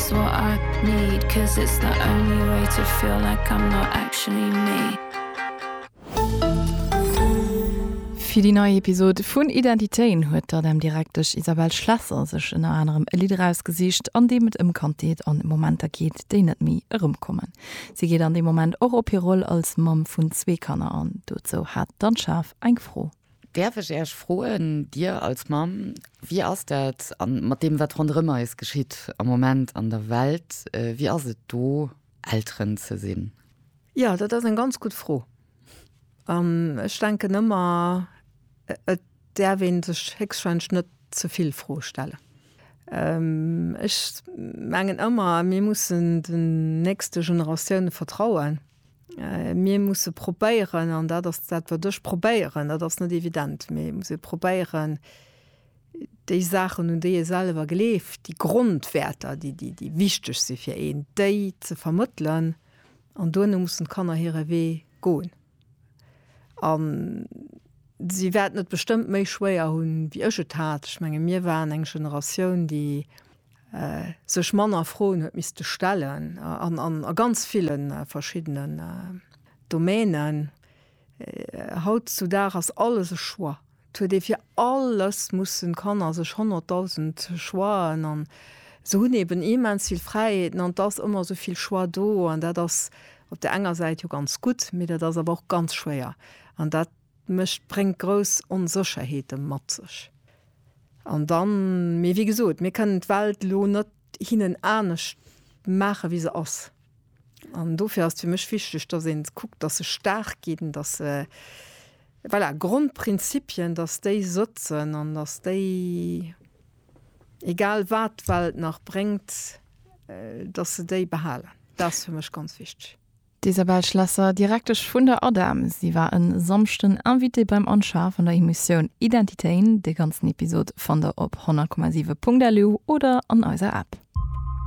It's what I need, 'cause it's the only way to feel like I'm not actually me. Fir déi nei Episod vun Identitéen huet d'ADEM-Direktesch Isabelle Schlesser sech ënner anerem e Lidd erausgesicht, an deem et ëm Kandheet an Momenter geet, déi net méi erëmkommen. Si geet an deem Moment och op hir Roll als Mamm vun zwee Kanner an. Dozou hat d'Anne Schaaf eng Fro. Däerf ech Äech froen, Dir als Mamm, wéi ass dat an mat deem wat ronderëm eis geschitt am Moment an der Welt, wéi ass et do Elteren ze sinn? Jo, dat ass eng ganz gutt Fro. An ech denken ëmmer, et däerf ee sech héchstwahrscheinlech net ze vill Froe stellen. Ech mengen ëmmer, mir mussen den nächste Generatioune vertrauen. Mir musse probéieren, an dat ass dat, wat ech probéieren, dat ass net evident, mee et muss ee probéieren, déi Saachen, un déi ee selwer gleeft, déi Grondwäerter, déi, déi, déi wichteg si fir een, déi ze vermëttelen. An duerno mussen d'Kanner hire Wee goen. A si wäerten et bestëmmt méi schwéier hunn, wéi ech et hat. Ech menge mir waren eng Generatioun, déi sech manner Froen huet misste stellen an a ganz ville verschiddenen Domänen. Haut zu Dag ass alles e Choix. Et huet ee fir alles mussen Kanner sech honnertdausend Choixen an se hunn eben immens vill Fräiheeten an et ass ëmmer esou vill Choix do an dat ass op der enger Säit jo ganz gutt, mee dat ass awer och ganz schwéier an dat, Mécht, bréngt grouss Onsécherheete mat sech. An dann, mee wéi gesot, mir kënnen d'Welt elo net hinnen anescht maache wéi se ass. An dofir ass et fir mech wichteg, datt ee kuckt, datt se staark ginn, datt se, voilà, Grondprinzipien, datt déi sëtzen an datt déi, egal wat d'Welt nach bréngt, datt se déi behalen. Dat ass fir mech ganz wichteg. D'Isabelle Schlesser, Direktesch vun der ADEM. Si war en Samschden Invitée beim Anschaf an der Emotioun Identitéin. De ganzen Episod fannt der op 100,7.lu oder an eiser App.